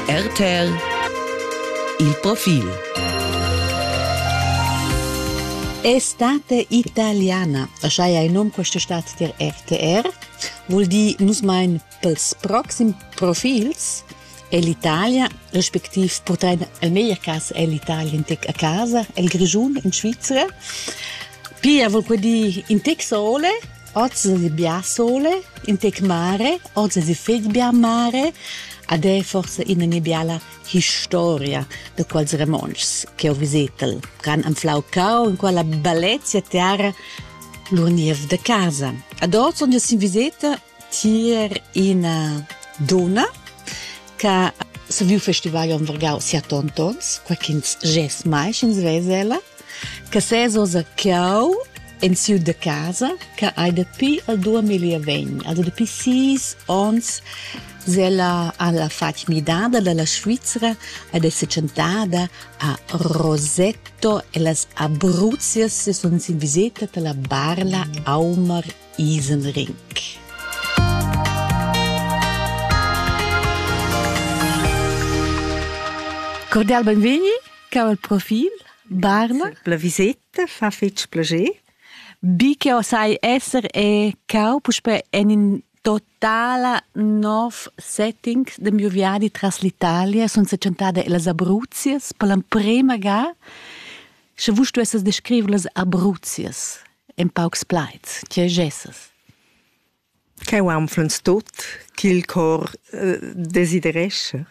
RTL Il profil Estate italiana, așa e nom queste stat tier RTR, vuol dir nus mein pels proxim profils L'Italia, respektiv portrein el meglier cas l'Italia in tec a casa, el Grischun in Svizzera. Pia vuol quei dir in tec sole Oz di bia sole in tec mare, oz di fetg bia mare, ad è forse ina mia biala historia de quels romontschs che ho visetel, ch'han anflau cau in quella bellezia terra lur niev de casa. Ad oz onde sin viseta tier ina donna che se viu festival on vargau sia tontons, quaquins ges mai sch'ins vese ella, Che ses oz a Cau in siu da casa che hai dapi al 2020, also dapi sis ons, se la alla fatg midada dalla Svizzera ed è secentada a Rosetto e las Abruzzias se sono in visita per la Barla Aumar Isenrink. Cordial benvegni! Cau il profil? Barna? La viseta fa fetg plascher. Bi che sai esser è cau puspè en in totala nov setting de miu viadi tras l'Italia sun sechantada las Abruzias per l'emprema ga sche vus stuesses descriver las Abruzias en paucs plaids, tge gesses? ch'eu anflans tuot ch'il cor desiderescha.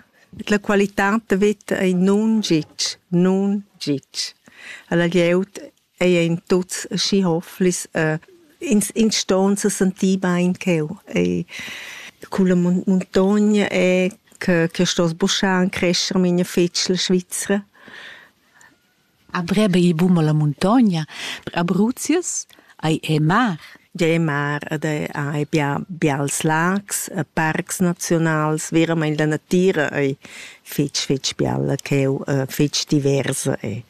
La qualità da veta ei nun gitg, nun gitg. Alla glieud ei ein tuts aschi hofflis, ins ins ston se sentir bein ch'eu. Ei culla muntogna è che che sto sbuschar e crescher mia fitg la Svizra. A breba il bum alla muntogna, per Abruzius ei ei mar. Ei mar ed ei bia bials lags e parcs naziunals. Veramein la natira ei fetg fetg bialla cheu, fetg diversa ei.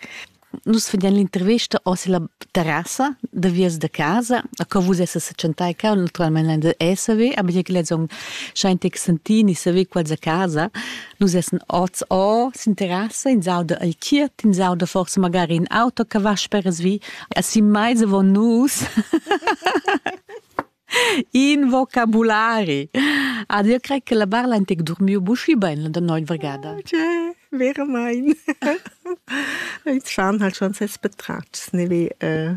Nus vedein l'intervesta oz ella terrassa da vias da casa, a co vus essas setschentai cau, naturalmein ein da esser ve, aber jeu lezong schein ti sentini saver quals a casa. Nus essan oz o, s'interessa, ins auda el chiert, ins auda forse magari in auto che va speras vi. E si mai vo nus in vocabulari. Ad io crei che la barla antic dormiu buschi ben la noi vergada. Cioè, vero mein. Il Zahn hat schon ses Betratschs, ne wie äh,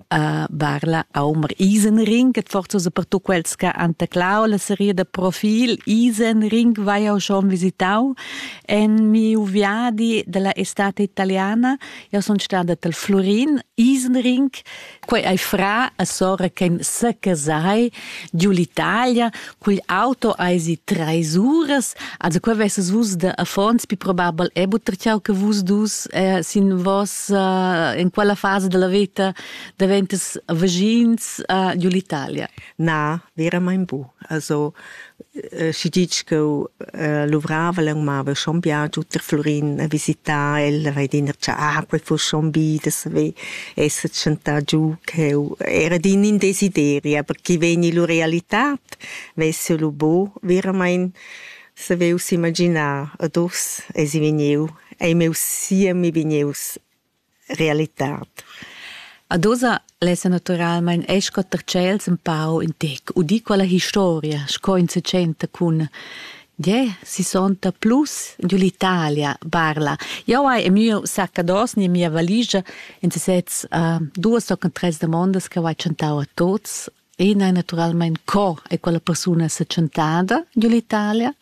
a Barla Aumer Isenring, et forza so per tu quels che han teclau la serie da profil Isenring vai jau schon visitau en miu viadi della estate italiana io son stada tel Florin Isenring quei ei fra a sora che sa casai giù l'Italia Quel auto eisi treis uras, also qua vesses vus da affons pi probabel è butter ciao che vus dus eh, sin vos eh, in quella fase della vita daventas vagins eh, giù l'Italia. Na, veramente bu. Also eh, si dici che eh, luvrava lang mava schon biagiu ter Florin a visitare el, vai dir ah, quel fu schon bi, das ve esser tschentà giu ch'eu era d'in in desideri, aber chi vegni lur realitad, vess'eu lu bo veramaing saveu s'imaginar ad uss esi vegnieu, ei meu siemi vegnieus realitad. Ad oza lessa naturalmein esch quatter tschels empau in tec, udì quella historia, sco in secenta cun Gie, si sonta plus giu l'Italia, barla. Jau hai e miu saccados ni mia valigia in sesez uh, duas o tres demandas che hai chantau a tots. Ina è naturalmente co è quella persona se chantada giu l'Italia.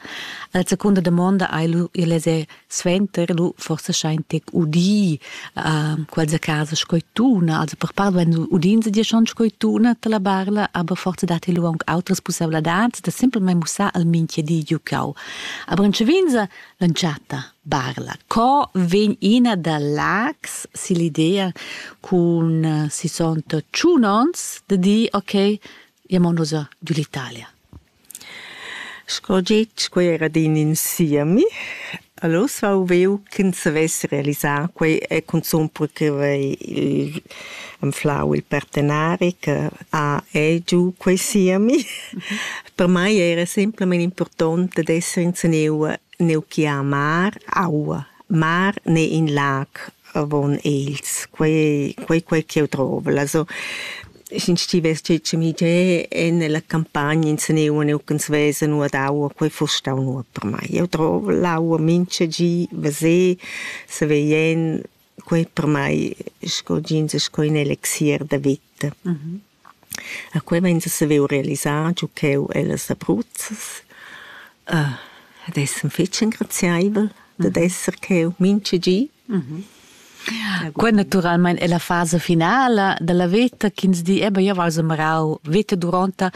La seconda domanda hai lu il es suenter lu forsa schein tec udì äh, quels a casa sco tuna also per part wenn udin sie dir schon sco tuna la barla aber forza dat lu aunc outras possibilidades da simpelmente mussar al minche di giucau aber in cevinza lanciata barla co vegn ina da lags si l'idea con äh, si sont tschunons de di ok jamo nos du l'Italia Sco getg, quei era adina in siemi. Allura vau viu ch'ins savess realisar quei e cunzun per che vei il anflau il partenari che ha e giu quei siemi. Per mei era semplamein impurtont dad esser enzatgeu neu gie a mar, aua. Mar ne in lag avon els. Quei ei quei quel ch'jeu drovel. Also Sch'ins stivess tschitschemì giè nella campagna insaneu neuch'ns vesa nua d'aua, quei fuss stau nuot per mai. Eu drov l'aua mincha gi, veser, saver jen, quei per mai sco jeans es sco ün elixier da vita. A quei vain a saver realisar giò ch'eu ellas Abruzzas. Ad esser fetg engraziaivel dad esser ch'eu mincha gi Quei naturalmein è la fasa finala dalla veta ch'ins di, eba, jeu val semrau veta duronta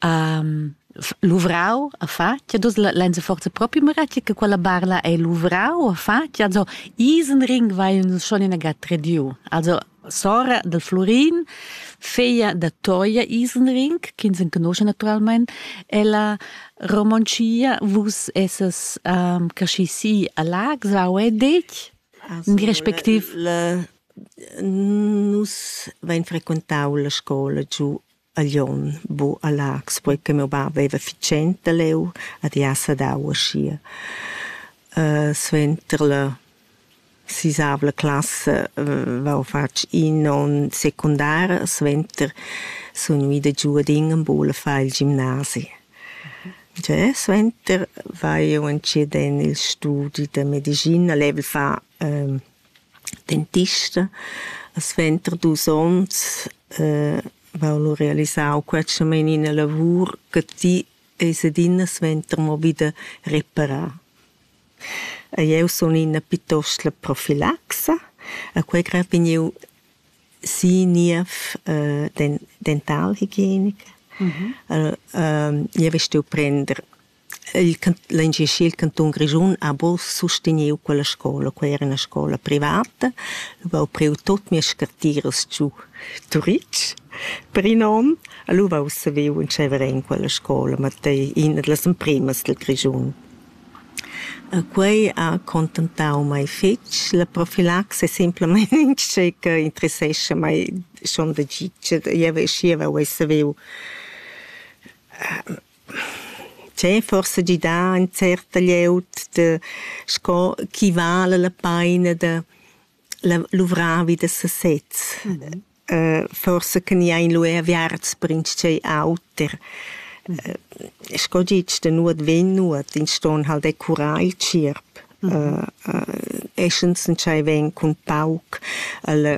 um, luvrau a fatg, e dus lenza forza propi meraci che quella barla ei luvrau a fatg, also isen ring vai uns schon in agat rediu. Also sora del Florin, figlia da Toia Isenring, ch'ins enconosce naturalmente, ella romoncia vus esses um, caschi si a Lags, au è dec? In respectiv... La, nus vain frequentau la scola giu a Glion bu a Laax, poi che meu bab veva fitschent da leu ad i ha sadau aschia. suenter la sisavla classa vau fatg in onn secundara, suenter sun gnüda giu ad in a Bula a far il gimnasi. Già suenter vai io entschiet en il studi da medischina, level fa dentista. A suenter dus onns eh, vau lu realisau quetschamain ina lavur che ti eis adina suenter mo vida reparar. E jeu sun ina pietost la profilaxa, a quei grad vegn jeu sin niev eh, den, dentalhigienica. Mhm. Äh, ähm, jeu vestiu prender Il l'engaschi il cantun Grischun ha buca susteniu quella scola, quei era ina scola privata. Lura ho priu tut mias scartiras giu Turitg per in onn. Allura ho saviu entscheiver en quella scola, ma ei ina dallas empremas dil Grischun. Quei ha contentau mei fetg. La profilaxia è semplamein in che interessescha mei schon da gitg. Jeu schieva uei saviu Tgei forsa gidà in certa glieud da sco chi vala la paina da la luvrar vi da sasez. Forsa che gnà in lu eir aviarts per intschei auter. Sco gitsch da nuot vegn nuot, ins ston hal decurar il tschierp. Essens entschei vegn cun pauc alla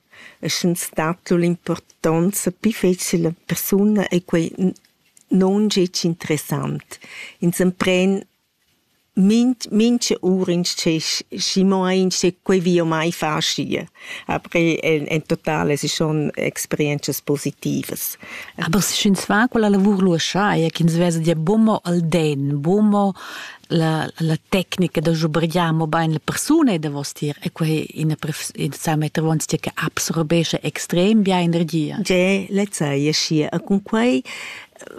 e sche stat lur impurtonza pli fetschel a persuna e quei non gec interessant. Ins empren minch, mincha ura insce, schi mo insce quei vi o mai far schie. Aber en, en totale si schon experienzias positivas. Aber sch'ins fa quella lavur lu scha, ja, ch'ins vesa dir bomo al den, bomo la, la tecnica da schubrigliar mo bain la persuna davostier e quei ina sa meter vonzia che absorbesce extrem bia energia. Ge, lezza e schi e cun quei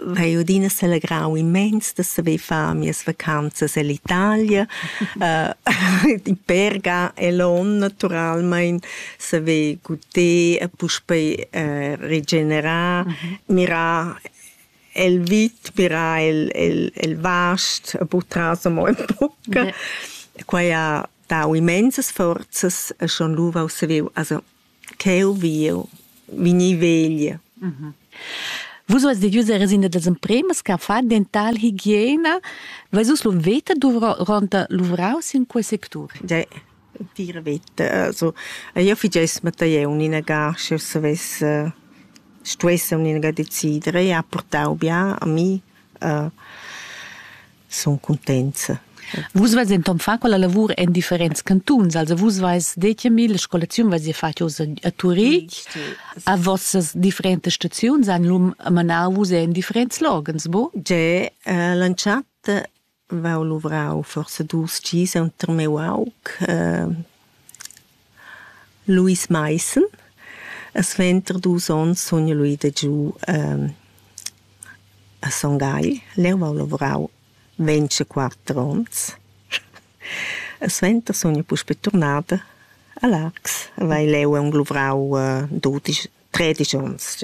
vai odina selegrau immens da saver far mias vacanzas ell'Italia uh, in Perga e l'on naturalmente saver guder e puspei uh, regenerar mm -hmm. mirar el vit pirà el el el vast e purtras amo ün poch. Quai ha dau immensas forzas e schon lu vau saviu also cheu viu vegnir vegl. Vus vus devius eres in das empremas che fa dental higiena. Vais vus lu veta duvra ronta luvrau sin quei sectur? Ge. Tira veta, also io figess mattei uninaga sch'eu savess stuessa uninaga decidere e ha purtau bia a mi, sun cuntenza. Vus veis denton fatg quella lavur en differents cantuns, also vus veis detg a mi la scolaziun veis ihr fatg oz a Turitg, a vossas differentas staziuns han lum manau vus en differents loghens, bu? Ge, l'entschatta Vau luvrau forsa dus gis enter miu aug Luis Maissen. Suenter dus onns sun jeu lu ida giu a Son Gagl. Leu vau luvrau vintiquatter onns. Suenter sun jeu puspei turnada a Largs. Vai leu aunc luvrau dudisch, tredisch onns.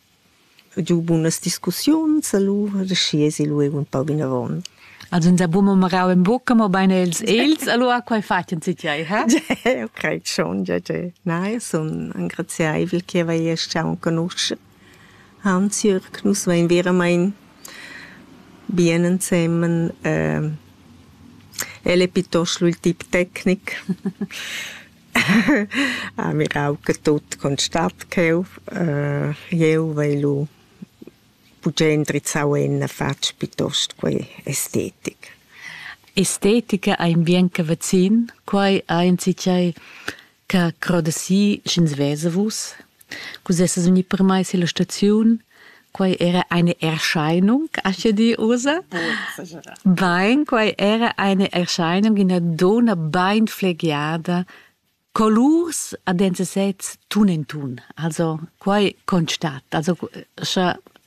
Ho giu bunas discussiuns alura, schi esi lu eir ün pau vinavon. Els han da buca mo marau en bucca, mobein els els, allura quei fatien si tiei, ha? Ho caschun, ja, ja. Nein, sun engraziaivel che vaier stau enconuscher Hans Jürg. Nus vein veramein bien ensemen. El è piuttosto il tip tecnic. Ah, mirau che tut constat cheu. jeu vai lu buca indrizzau en fatg piuttost quei estetic. Estetica ei in bien che vacin, quei ei enzatgei che croda si sch'ins vesa vus. Cus essas uni permeis illa staziun? Quai era eine Erscheinung, ascha di usa? Bain, quai era eine Erscheinung, ina donna bain flegiada, colurs ad enzas sez tun en tun. Also, quai constat. Also, scha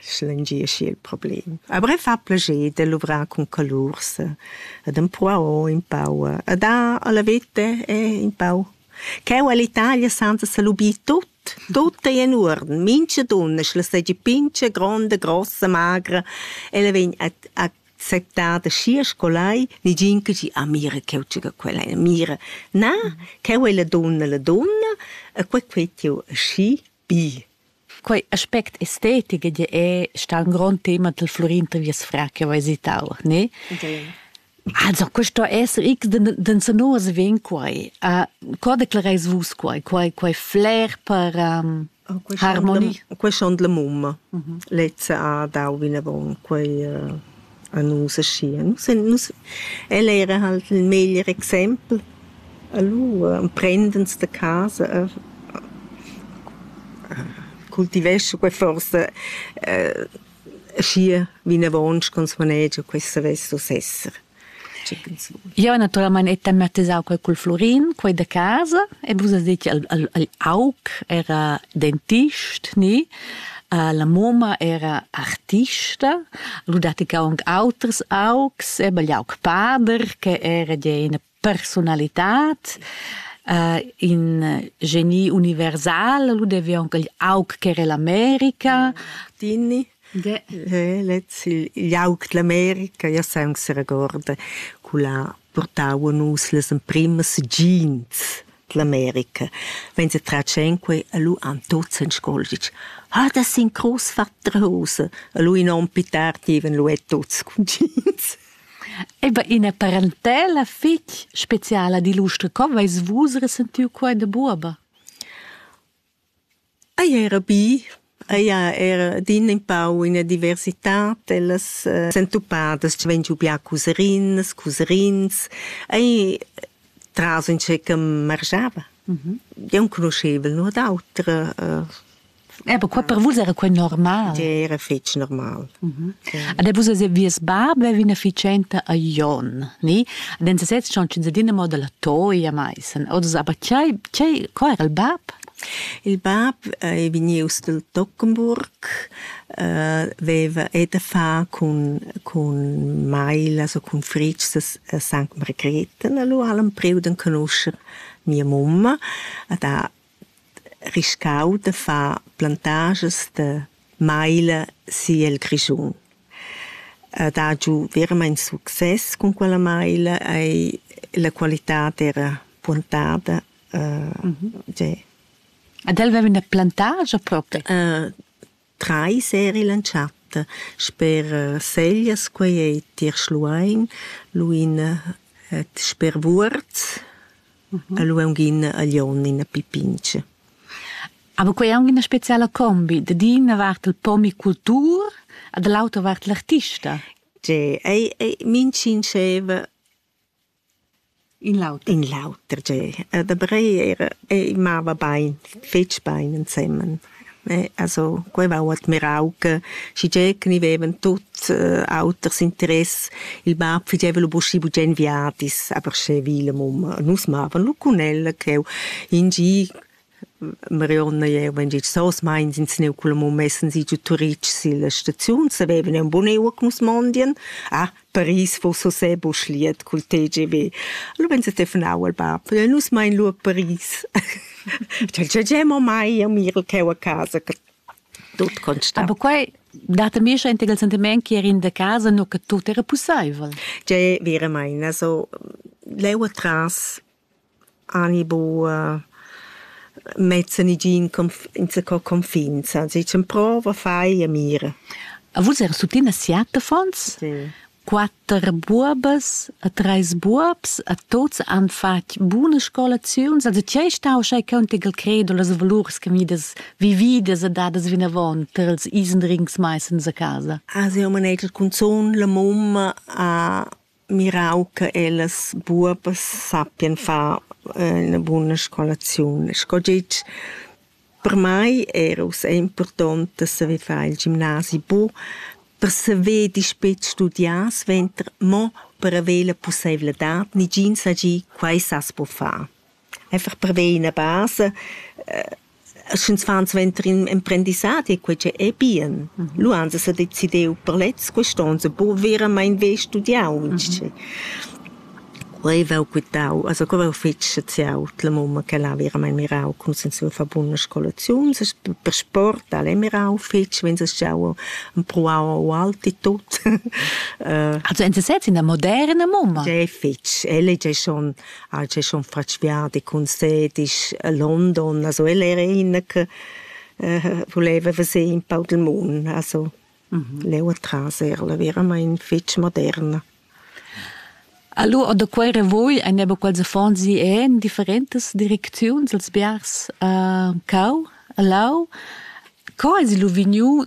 schlengieschi il problem. A bre fa plager de luvrar cun calurs ed empruar un pau e da alla vete è un pau Cheu all'Italia senza salubi tut, tut è in urden, mince dunna sch'la segi pince, gronda, grossa, magra, ella vegn a acceptar da schier scolai, nigin che gi, ah mira cheu tschega quella, mira, na, cheu è la dunna, la dunna, e quei quei tiu schi, Bi. Quei aspect estetic ed è stà un grond tema del Florin Tavias Fra che ho esitau, ne? Also, questo esser ich den den sonos ven quai. Uh, co declareis vus quai? Quai quai flair per um, harmonie? Quei schon de mumma. Lezza ha dau vinavon quei uh, a nus aschia. Nus en nus, el era halt il meglier exempel. Allura emprend'ins da casa a cultivescha quei forsa aschia vinavon ch'ins manegia quei savess uss esser. Tgei ch'ins vul. Jeu naturalmein hai tematisau quei cul Flurin, quei da casa, e vus has detg al, al, al aug, era dentist, ni? La mumma era artista, lu dat ei aunc auters augs, ebbe igl aug pader che era gia ina persunalitad, in geni universal, lu devi aunc igl aug ch'era ell'America. Tini. Lez, igl aug dell'America, jeu sai aunc seregorda, cu l'ha purtau a nus las emprimas jeans. l'America vegn se tratg enquei a lu han tuts en scolgitg ha da sin crus fatta rosa a lu in onn pi tard ivan lu e tuts cun jeans Eba ina parentela fitg speciala di l'ustra co veis vus resentiu quei da buoba? Ei era bi, ei ha era adina empau ina diversitad ellas sentupadas che vegn giu bia cuserinas, cuserins. Ei tras entscheica margiava. Jeu enconuschevel nuot auter. Aber qua per vus era quei normal. Era fetg normal. Ad vus es vies bab avevi ina ficenta a Jon, ni? Ad en sesez schon ins adina mo dalla toia maissen. Oz aber tgei tgei qua era il bab? Il bab ei vegnius dil Tockenburg, veva e da far cun cun mailas o cun fritgs a Sankt Margrete. Lu ha'l empriu d'enconuscher mia mumma ed ha riscau da far plantagias da maila si el Grischun. Ed ha giu veramein success cun quella maila ei la qualitad era puontada Tgè. Ed el veva üna plantagia propi? Trais eri l'an chat sper Seglias, quei ei tier Schluein, lu in sper Vuorz e lu aunc in a Glion, in a Pipinch. Aber quei è anche una speciale combi, da d'ina vart il pomicultur e dall'autra vart l'artista. Tgè, ei, ei, min sinceva In l'auter. In l'auter tgei. Da Brei era ei mava bein, fetg bein ensemen. Also quei va ho admirau che schigie che ni vevan tuts auters interess, il bab fageva lu buschi bugen viadis, aber sche vi la mumma, nus mavan lu cun ella cheu in gi Marionna jaivan gist sos meins ins gneu culla mumma essan si giu Turitg silla staziun, savevan eun bun eua che nus mondien. Ah, Paris fuss ussè buc liet cul TGV. Allura vegn telefonau al bab, nus mein lu a Paris. Cel già già mo mai a mir cheu a casa, che tut constant. Aber quei dat a mi schon il sentiment che er in de casa nu che tut era pussaivel. Già veramente, also leu atras Ani buc mezzan i giu insaco confins, ans dicen prova, fai e mira. E vus eras tuttina siat affons? Sì. Quatter buobas e treis buobs e tuts han fatg buna scolaziuns. Also tgei stau sch'ei contigl credo las valurs che midas vividas e dadas vinavon per ils isendrins mai sens a casa? Ah, siu manegia cunzun la mumma a mirau che ellas buobas sappien far ina buna scolaziun. Sco gitg per mei era ussa impurtont da saver far il gimnasi bu per saver dispet studiar suenter, mo per haver la pusseivladad. Negin sa gie, quei sas buca far. einfach per ver ina basa uh, sch'ins fan suenter in emprendissadi quei che ei bien mm -hmm. lu ans sa decidiu per lez quest'onza bu veramente ve studiau mm -hmm. quei vau quitau also quei vau fitg saziau la mamma che l'ha veramente mirau cum sen sua fa buna scolaziun per sport al è mirau fitg wenn es schau un pruau alti tut uh, also en se selbst in der moderne Mama ja fitg elle ja schon ha el chaschun fatg viadi cun sedisch a London, also el era iina che äh vuleva veser in pau del mund, also leu atras er'la veramaing fetg moderna. Allora da quei revuoi ein aber quels affons gì en differentas direcziuns als biars äh, cau, a Lau. Co hai lu vegniu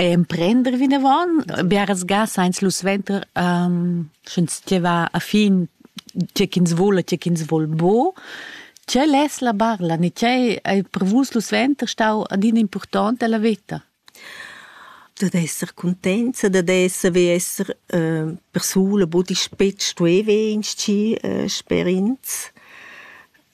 emprender vinavon biaras ga sainz lu suenter um, sch'ins va a fin tge ch'ins vole, tge ch'ins vol bo. Tge less la barla, ni tge hai prevus lu suenter stau adina important della veta? dad esser contenza, dad esser vi esser äh, persuna, bu ti spetg tu e vegns ci äh, sperins.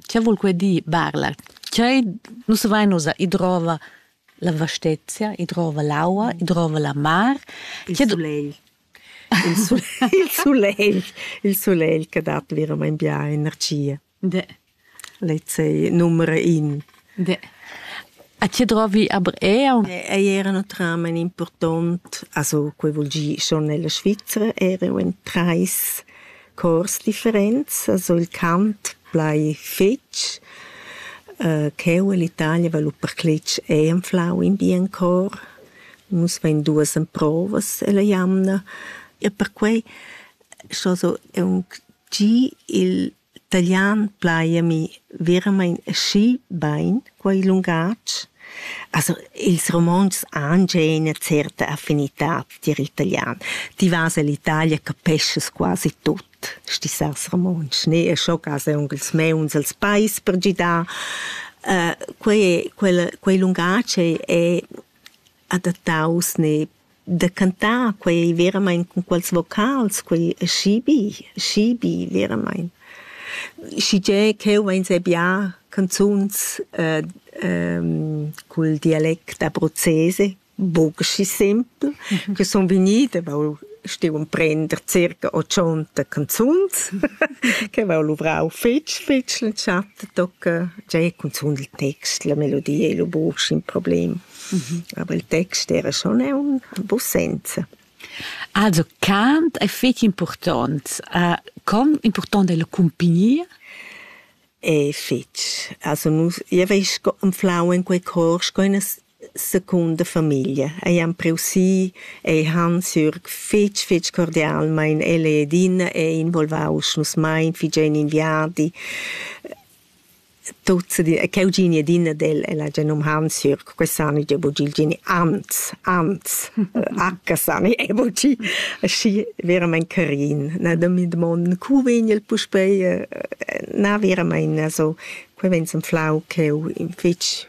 Che vul quei dir barlar? Tgei nus vein ussa, i drova la vastezia, i drova l'aua, i drova la mar. Il sulegl. Il sulegl, il sulegl, il sulegl che dat veramein bia energia. De. Lezei numera in. A chi drovi aber eau? Ei era no tramen important, also quei vul gir schon nella Svizzera, er'eu in trais cors differents, also il cant plai fetg, uh, ch'eu e l'Italia valu percletg einflau in bien cor. Nus vein duas emprovas ella jamna e perquei scho so eunc gi il taglian plaiami veramein aschi bein quei lungatg. Also ils romontschs han gia ina certa affinitad tier il talian. Ti vas ell'Italia, capeschas quasi tut stisas romontsch, ne? E scho cas aunc ils meuns els pais per gidar. Uh, quei, quel, quei lungatg è adattaus ne da cantar quei veramein cun quels vocals, quei schibi, schibi veramein. Schigie cheu vein sei bia canzuns eh, ehm, cul dialect abruzzese, bucci simpel, mhm. che sun vegnida, vau stiu emprender circa 80 canzuns, che vau luvrau fitch, fitch l'entschatta tocca, già cunzun il text, la melodia e lo bucci in problem. Aber il text era schon aunc en buc senza. Also cant è fetg impurtont. Uh, com impurtont è la cumpagnia? È fetg. Also nus, io veis anflau in quei cor sco una seconda famiglia. Eiam Preussii ei Hans-Jürg fetg, fetg cordial, ma in el e Edina è involvaus nus mai, figen in viadi. Tut se di e cheu gini adina del e la gia num Hansjürg, questa ani gia bugi il geni Hans, Hans, H sani e bugi aschi veramein carin. Na da mi dmond, cu vegn el puspei? Na veramein, also, quei vegn semflau cheu in fetg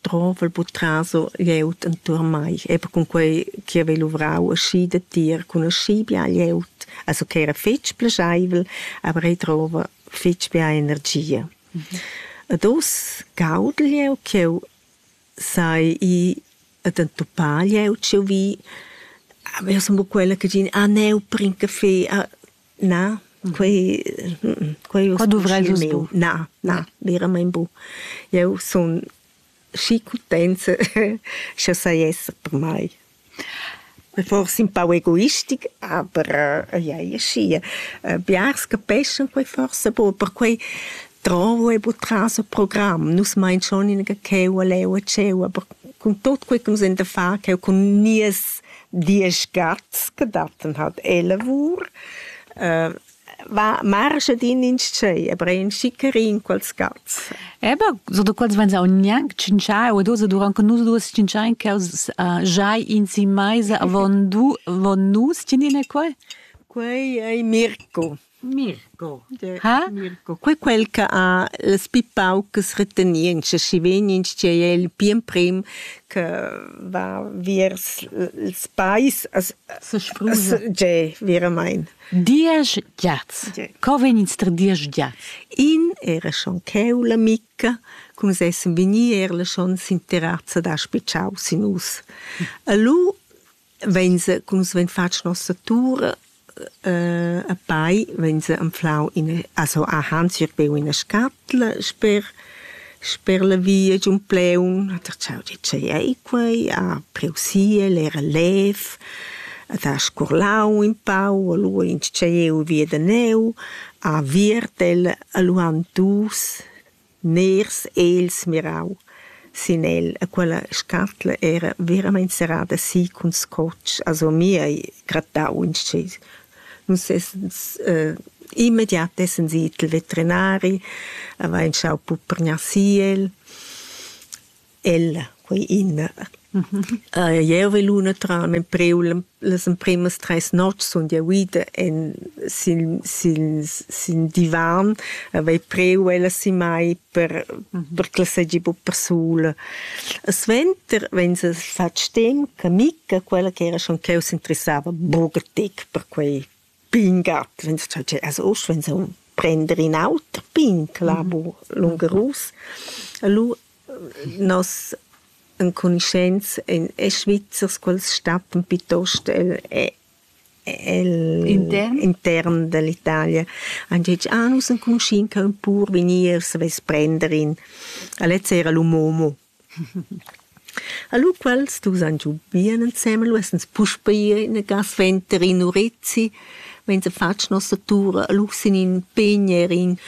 drovel buc traso glieud entuorn mei, eber cun quei che havei luvrau aschi datier cun aschi bia glieud, also che era fetg plascheivel, aber ei drova fetg bia energia. Ed oz gaudel jeu ch'jeu sai i ed entupar jeu tscheu vi. Aber io sun bu quella che din, ah, neu, bring caffè, ah, Na, quei, quei Qua duvreis vus bu. Na, na, veramein bu. Eu sun schi cutenza scha sai esser per mai. Forse un pau egoistic, aber ei ei e schi. Biars capeschan quei forse bu, perquei Dravo e buca tras il program. Nus mein schon in cheu a leu a tscheu, aber cun tot quei che nus ein da far, cheu cun nies diesch gats che datten halt ellavur, äh, va marschet in in tschei, aber ein schickerin quels gats. Eba, so da quels vegns aunc gnanc tschintschai o dos, durant che nus duas tschintschein cheus uh, giai in si meisa avon du, avon nus, tinin e quei? Quei ei Mirko. Mirko. Ha? Mirko. Quei quel che ha las pi paucas retenientschas, schi vegniens tgei è il pli emprim che va viers ils pais a Sesprusa. Tgei, veramein. Diesch giats. Co vegnins tra diesch giats? In era schon cheu la Micca, cum sessen vegnir era schon sin terrazza da spitschau sin us. E lu vegn se, cum se vegn fatg nossa tur, eh, a pai vegn se anflau ina, also a Hans ir beu ina scatla sper sper la via giun Pleun, hat er ciao di ce ei quei, a Preusiel era lev, at ha scurlau in pau, allu in ce jeu via da neu, a Viertel allu han dus Nairs ha els mirau sin el e quella scatla era veramein serrada si cun scotg, also mi hai grattau inschess. Nus essens immediat essan si i'l veterinari, avain schau puprgnar si el. Ella, quei ina. jeu vai lu a trar empreu las empremas treis notgs sun jeu ida en sil sil sil divan, havei preu ella si mai per per ch'ella seigi buca persula. E suenter vegn se fatg stem che Micca, quella ch'era schon cheu s'interessava buca tec per quei Pingat, vegns tscheu tschè as uss vegns aunc prender in auter pin clavo lungarus. Lu nos encunuscents ein e Svizzers quels stattan piuttost el el intern intern dall'Italia. Han detg ah nus enconuschin ca ün pur vegnier savess prender in. A lezza era lu Momo. Alura quels dus han giu bien ensemen, lu essens puspei ina ga suenter in urezi, vegn fatg nossa tur alura sin in pign er in.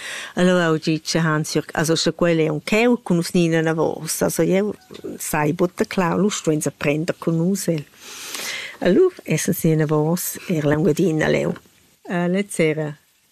Allura ho ditg a Hansjörg, also scha quel è auncheu cun nus ni inavos, also jeu sai buca clau, lu stuein sa prender cun nus el. Alura essens inavos er l'Engiadina leu. Lez sera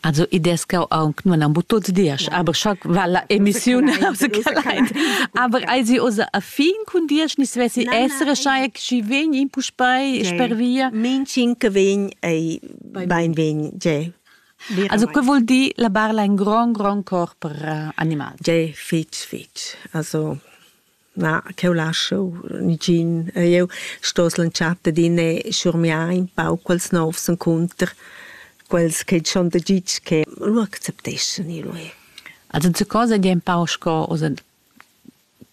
Also i des cau aunc nun am tuts dias, aber scha va la emissiun aber ei sie osa a fin cun dias ni svessi essere schai chi vegn in puspei sper via Mincin che vegn ei bein vegn je Also que vuol dir la barla in grand grand corp per animal. Je fitch fitch. Also Na, ch'eu lascho nigin. Eu stoss lantschar adin e schurmiar ün pau quels novs encunter, quels che dschon da gitg che lu accepteschan i lui. Also ze cosa gie un pau sco oza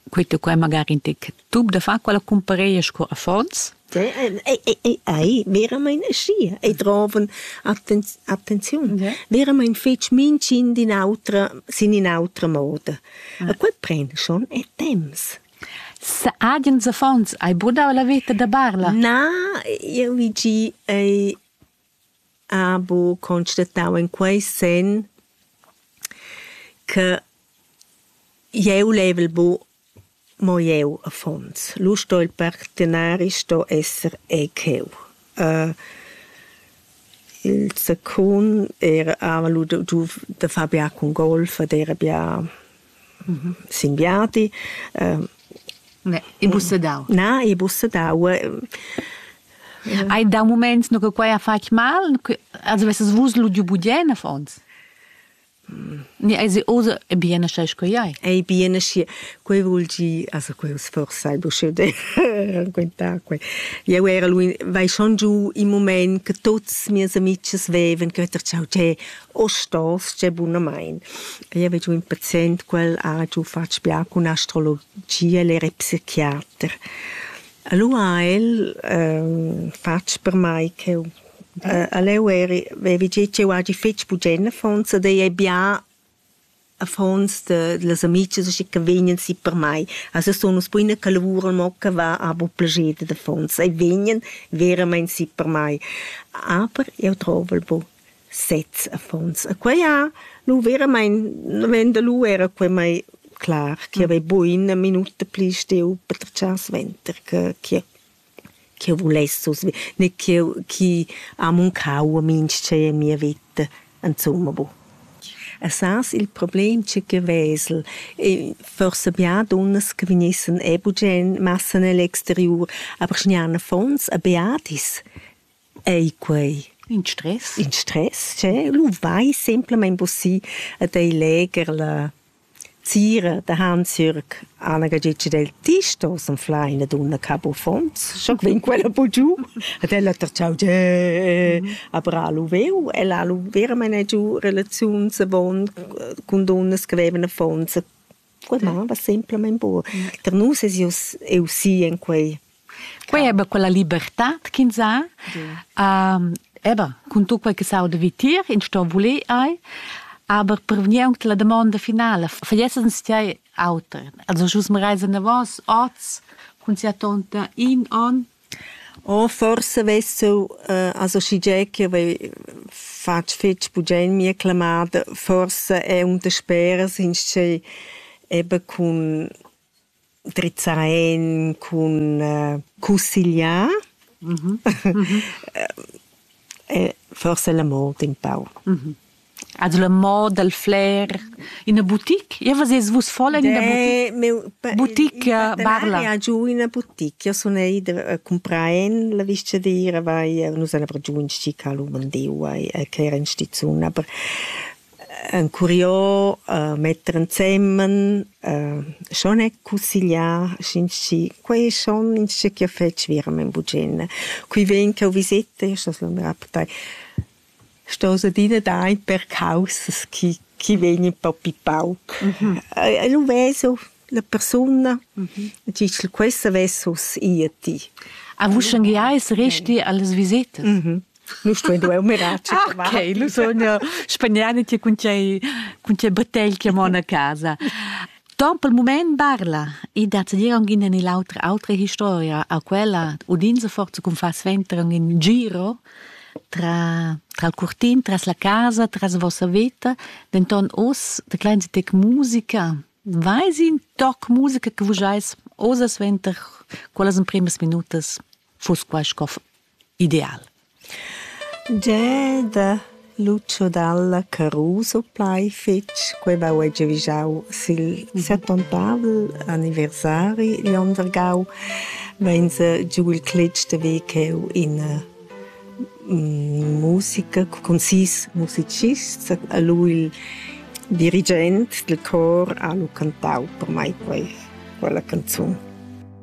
quei tu quei magari in tec tub da far quella cumpareia sco affons Ei veramein aschia, ei drovan attenziun, veramein fetg mintgin d'in autra, sin in'autra moda. E quei pren schon e temps. Agens affons hai brudau la veta da Barla? Na, jeu vi gi, ei ha buca constatau in quei senn che jeu level bu mo jeu affons. Lu sto il partenari sto esser ei cheu. Il secund era hava lu giu da far bia cun golf ed era bia Singhiati e bussedau. Na, e bussedau. Hai da moment no che quai ha fatg mal? Also vesses vus ludiu budien affons? Ni ei se osa e bien sche sco ei? Ei bien schi. Quei vul gi, also quei sforza il busche de raccontar quei. Jeu era lui, vai schon giu in moment che tuts mias amics veven, che ter ciao, che Ostals gie bunamain. Io vi giu in pazient quel ha giu fatg bia cun astrologia ella era psichiater. Allura ha el fatg per mai ch'eu all'eu eri vevi gio ch'eu hagi fetg bugen affons ed ei ei bia affons de, delle amiche che vegnan si per mai. Also sono uns buine che lavuran mo che va abo plager de affons e vegnan veramente si per mai. Aber io trovo il buon sez affons. E quei ha nu veramente, wenn der lu era quei mai clar, che mm. aveva buine minuta pli steu per tschar sventer che che ch'eu vuless survi- ne ch'eu chi ha muncau a minchè a mia veta insumma boh. E sas il problem cha que vesel? Forsa be a dunnas che vegnessan e bugen massan egl exteriur, aber sch'gnan affons, e beadis. ei quei in stress in stress che lu vai semplamein busi ad ei leger la Zira de Hans-Jürg Anagagitsch del Tisto s'anfla ina dunna cabo fons schon vin quella bu giu ad ella terciau ge a bra lu veu ella lu veramen giu relaziuns avon cun dunnas che vevan affons Clamar va semplamain bu tar nus es eau eau si en quei. Quei eba quella libertad ch'ins ha. Eba, cun tut quei che s'auda vitier, ins sto voler ei, aber per vegnir aunc alla damonda finala, fallessens tgei auter? Also sch'us marais anavos oz cun sia tonta in onn Oh forsa vess jeu associgià ch'jeu vei fatg fetg bugen mia clamada. Forsa è un dasperas inscè eben cun drizzar en, cun cussegliar. Forsa la mort in pau. Ed la moda dal flair, ina boutique? Io vesais vus voll en ina boutique? Boutique Barla. Ha giù ina boutique. Io sun ida a cumprar en la vistgadira, vai, nus han giù in stica lu mandeu, vai, che era in stizun, aber ein curios uh, metter ensemen, uh, schon è consiglià, quei schon in che fetg virem in bugena. Qui ven che ho visetta, io sto la mia portai stos adina dar in per caussas chi chi vegnan propi pauc. E lu vesu la persuna, e tgi ch'el questa vess uss i a ti. A uschengia eis resti allas visitas. Nu stuein duer miracel. Ok, lu sogna spagnani ti cun tgei cun tgei bottegl che mon a casa. Ton pel mument barla e dat dir aunc ina ni l'autra autra historia a quella udin se forza cun far sventrer in giro tra, tra il curtin, tras la casa, tras vossa veta, denton oz de klein tec musica. Vais in toc musica che vus eis oza suenter quellas emprimas minutas fuss quai sco ideal. Geda, Lucio Dalla Caruso plai fetg quei vau ei giavischau sil settontavel anniversari igl onn vargau vein se giu il cletg de ver cheu ina musica cun sis musicists e lu il dirigent dil chor ha lu cantau per mei quei quella canzun.